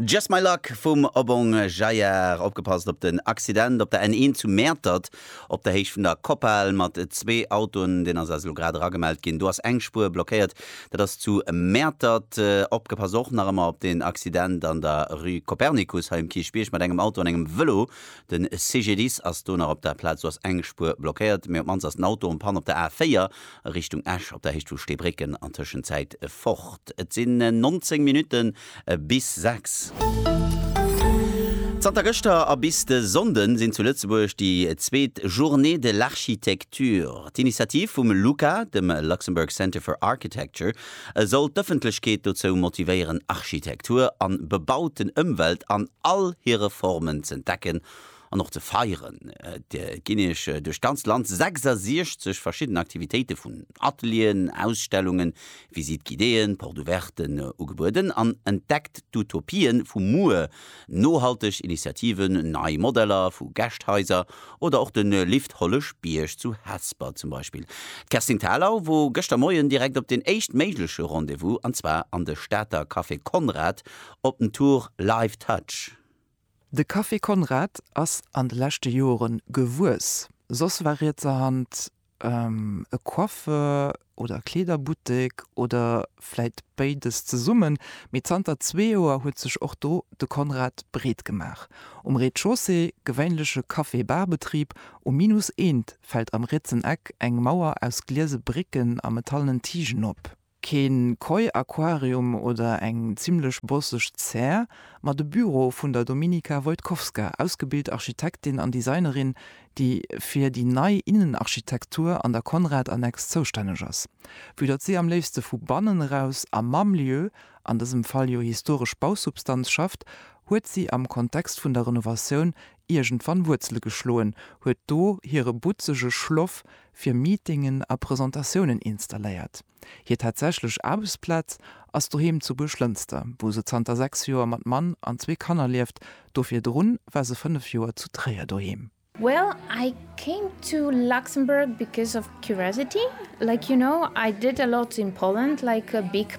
Just My Luck vum Obong Jayar. Opgepasst op den Accident op der N1 zu Mäertert op der Héicht vun der Koppal mat zwee Autoen. Deen ass eis elo grad eragemellt ginn. Do ass eng Spuer blockéiert, dat ass zu Mäertert. Opgepasst och nach ëmmer op den Accident an der Rue Copernicus hei um Kierchbierg mat engem Auto an engem Vëlo. De CGDIS ass do nach op der Plaz. Do ass eng Spuer blockéiert, mee op d'mannst ass den Auto en panne op der A4 a Richtung Esch op der Héicht vu Steebrécken an Tëschenzäit fort. Et sinn 19 Minutte bis 6. Zanter gëschter a bis de Sonnde sinn zu Lëtzebuerg déi zweet Journées de l'Architecture. D'Initiativ vum LUCA, dem Luxembourg Centre for Architecture, soll d'Ëffentlechkeet dozou motivéieren, Architektur an bebauten Ëmwelt an all hire Formen z'entdecken An och ze feieren ginn Eech duerch d'ganzt Land 66 verschidden Aktivitéite vun Atelieren, Ausstellungen, Visites guidéeën, Porte ouverten ugebueden an entdeckt d'Utopie vu muer, nohalteg Initiativen, nei Modeller vu Gäscht-Haiser oder och de Lift Holleschbierg zu Hesper zum Beispill. D'Kerstin Thalau wor gëschter Moien direkt op deen éischt méigleche Rendez-vous, an zwar an de Stater Café Conrad op den Tour Live Touch. De Café Konrad ass an de leschte Jore gewuess. Soss war rietserhand e Coiffeur oder Kleederbuttek oder vläit béides zesummen, mee zanter zwee Joer huet sech och do de Konrad breet gemaach. Um Rez-de-chaussée gewéinleche Café-Bar-Betrib, um Minus eent fält am rietsen Eck eng Mauer aus gliese Bricken a metallenen Tigen op. Keen Koi Aquarium oder eng zimlech bosseg Zär, ma de Büro vun der Dominika Wojtkowska, ausgebilt Architektin an Designerin, déi fir déi nei Innenarchitektur an der Conrad-Annex zoustänneg ass. Vue datt si am léifste vu bannen eraus a mam Lieu, an dësem Fall jo historesch Bausubstanz, schafft, huet si am Kontext vun der Renovatioun iergendwann Wuerzele geschloen, huet do hire butzege Schloff fir Meetingen a Presentatiounen installéiert. Hir tatsächlech Aarbechtsplaz ass doheem zu Buerglënster, wou se zanter 6 Joer mat Mann an zwee Kanner lieft. Do virdrun war se 5 Joer zu Tréier doheem. Well I came to Luxembourg because of curiosity, like you know I did a lot in Poland like a big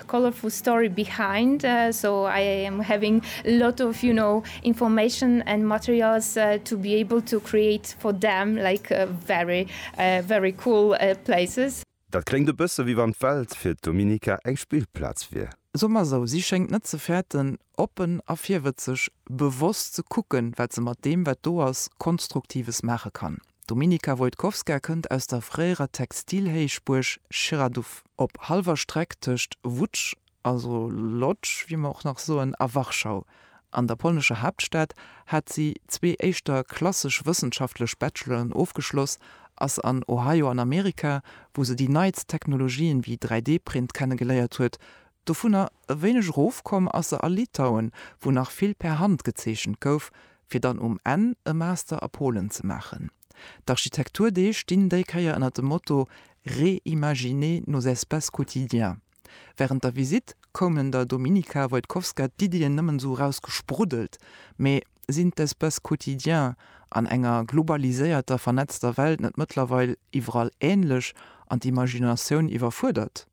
The colorful story behind, so I am having a lot of, you know, information and materials to be able to create for them like very, very cool places. Dat kléngt e bësse wéi wann d'Welt fir d'Dominica eng Spillplaz wier. So mer esou, si schéngt net ze fäerten, oppen a virwëtzeg, bewosst ze kucken, wat se mat deem, wat do ass, Konstruktives maache kann. D'Dominika Wojtkowska kënnt aus der fréierer Textilhéichbuerg Chiraduff. Op hallwer Streck tëscht Łódź, also Lodz, wéi mer och nach soen, a Warschau, an der polnescher Haaptstad, hat si zwee éischter klassesch wëssenschaftlech Bacheloren ofgeschloss, ass an Ohio an Amerika, wou se déi neitst Technologien wéi 3D-Print kennegeléiert huet, Dovunner e wéineg erofkomm ass se a Litauen, wou nach vill per Hand gezeechent gouf, fir dann um Enn e Master a Polen ze maachen. D'Architekturdeeg stinn déi Kéier ënner dem Motto Réimaginer nos espaces quotidiens. Wärend der Visitt koumen der Dominika Wojtkowska d'Iddien nëmmen esou eraus gespruddelt, mee sinn d'Espaces quotidiens an enger globaliséierter, vernetzter Welt net mëttlerweil iwwerall änlech an d'Imaginatioun iwwerfuerdert?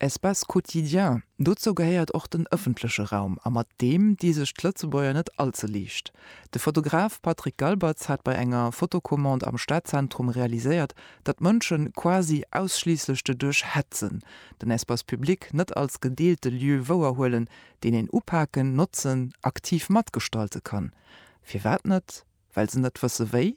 Espace quotidien, dozou gehéiert och den ëffentleche Raum a mat deem di sech d'Lëtzebuerger net all ze liicht. De Fotograf Patrick Galbertz hat bei enger Fotocommande am Stadzentrum realiséiert, datt d'Mënsche quasi ausschliisslech de duerch hetzen, den Espace public net als gedeelte Lieu wouerhuelen, deen een upaken, notzen, aktiv matgestalte kann. Firwat net? Well se net wësse wéi?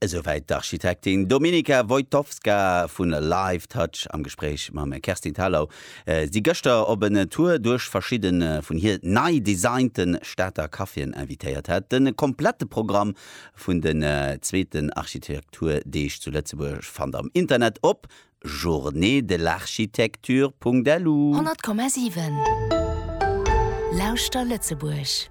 Esouwäit d'Architektin Dominika Wojtowska vu Live Touch am Gespréich mam Kerstin Thalau. Si gëschter op en Tour duerch verschidde vun hir nei designte Stater Caféen invitéiert hat. De komplette Programm vun den zweeten Architekturdeeg zu Lëtzebuerg fannt am Internet op journeedelarchitecture.lu. 100,7 Lauschter Lëtzebuerg!